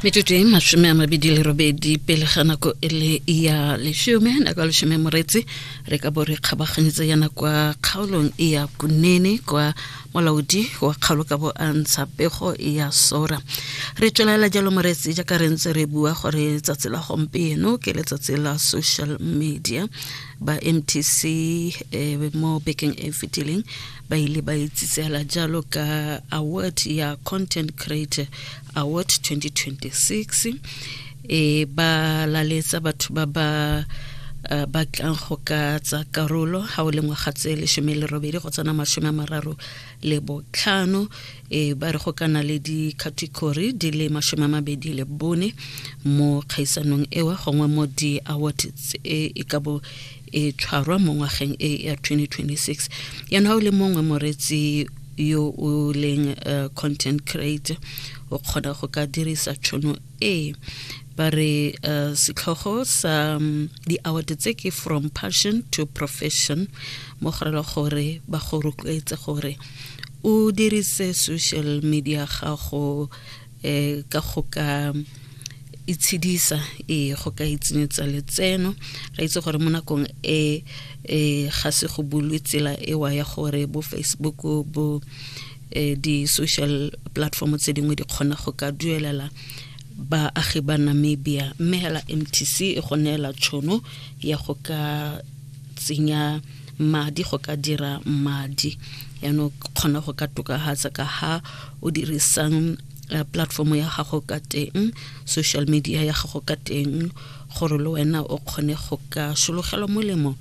metsotso e masome a mabedi le robedi pele ga nako e le ya lesome nako ya lesome moretsi re ka bo re kgabaganyetsa yana kwa kgaolong e ya kunene kwa molaodi wa kgaolo ka bo a ntsha pego ya sora re tswelela jalo moretsi jaaka re ntse re bua gore tsatsi la gompieno ke letsatsi la social media ba mtc eh, mo bekeng e fetileng ba ile ba itsitsela jalo ka award ya content creator award 2026 e ba laletsa batho ba ba uh, ba tlang go ka tsa karolo ga o le ngwaga tse lesome le robedi go tsena masome a mararo le botlhano e ba re go kana le di-category di le masome a mabedi le bone mo kgaisanong ewa gongwe mo di-award e, e ka bo e tshwarwa mo ngwageng e ya 2026 yana o le mongwe moretsi yo o leng uh, content creator o kgona go ka dirisa tšhono e ba re uh, setlhogo sa um, di-award tse ke from passion to profession mo go rela gore ba go rotloetse gore o dirise social media gago um ka go ka itshedisa ee go ka itsenyetsa letseno re itse gore mo nakong e e ga se go bulwe tsela ewa ya gore bo facebook bo eh, di-social platform tse dingwe di kgona go ka duelela baagi ba namibia mme hela mtc e go neela tšhono ya go ka tsenya madi go ka dira madi yaanong kgona go ka tokagatsa ka ha o dirisang uh, platform ya gago ka teng social media ya gago ka teng gore le wena o kgone go ka sologelwa molemo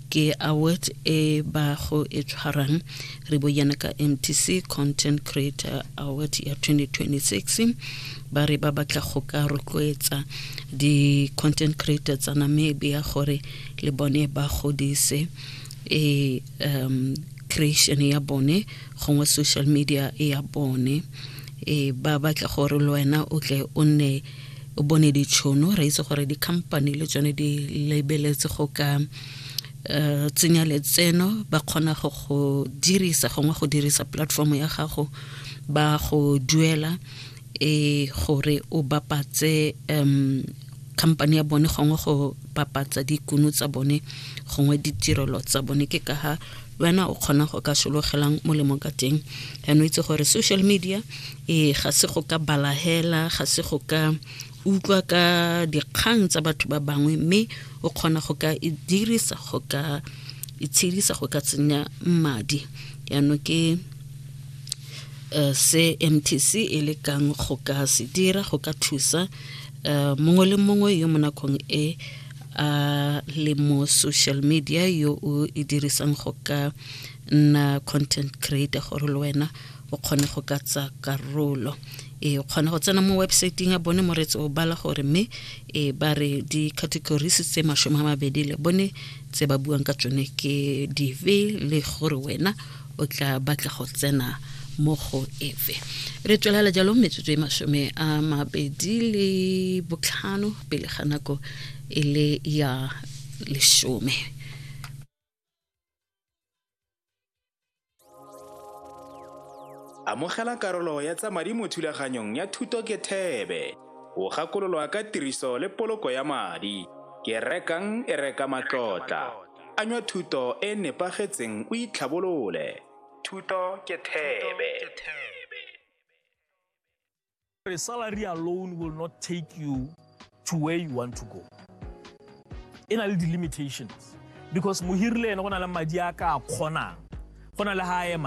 ke award e ba go e tshwarang re bo yana ka mtc content creator award ya 2026 ba re ba batla go ka rotloetsa di-content creator tsa namibia gore le bone ba godise e um creation ya bone gongwe social media e ya bone e ba batla gore le wena o tle o nne o bone ditšhono re itse gore di-company le tsone di lebeletse go ka Eh, tsenya letseno ba kgona go go dirisa gongwe go dirisa platform ya gago ba go duela e gore o bapatse um company ya bone gongwe go bapatsa dikuno tsa bone gongwe ditirelo tsa bone ke ka ha wena o kgona go ka sologelang molemo ka teng and o itse gore social media e ga se go ka balahela ga se go ka utlwa ka dikgang tsa batho ba bangwe mme o kgona go ka e dirisa go ka itshedisa go ka tsenya madi yaanong ke um se mtc e lekang go ka se dira go ka thusa um mongwe le mongwe yo mo nakong e a le mo social media yo o e dirisang go ka nna content creator gore le wena o kgone go ka tsa karolo e kgona go tsena mo websaeteng ya bone moretse o bala gore mme e ba re di-categories tse masome a mabedi le bone tse ba buang ka tsone ke dive le gore wena o tla batla go tsena mo go efe re tswelela jalo metsotso e masome a mabedi le botlhano pele ga nako e le ya lesome amogela karolo ya tsa madi mo thulaganyong ya thuto ke thebe o gakololwa ka tiriso le poloko ya madi ke rekang e reka matlotla Anywa thuto e e nepagetseng o itlhabolole. Thuto ke thebe. A salary alone will not take you to where you want to go. E na le di-limitations because mohiri le ene go na le madi a ka a kgonang go na le ha a eman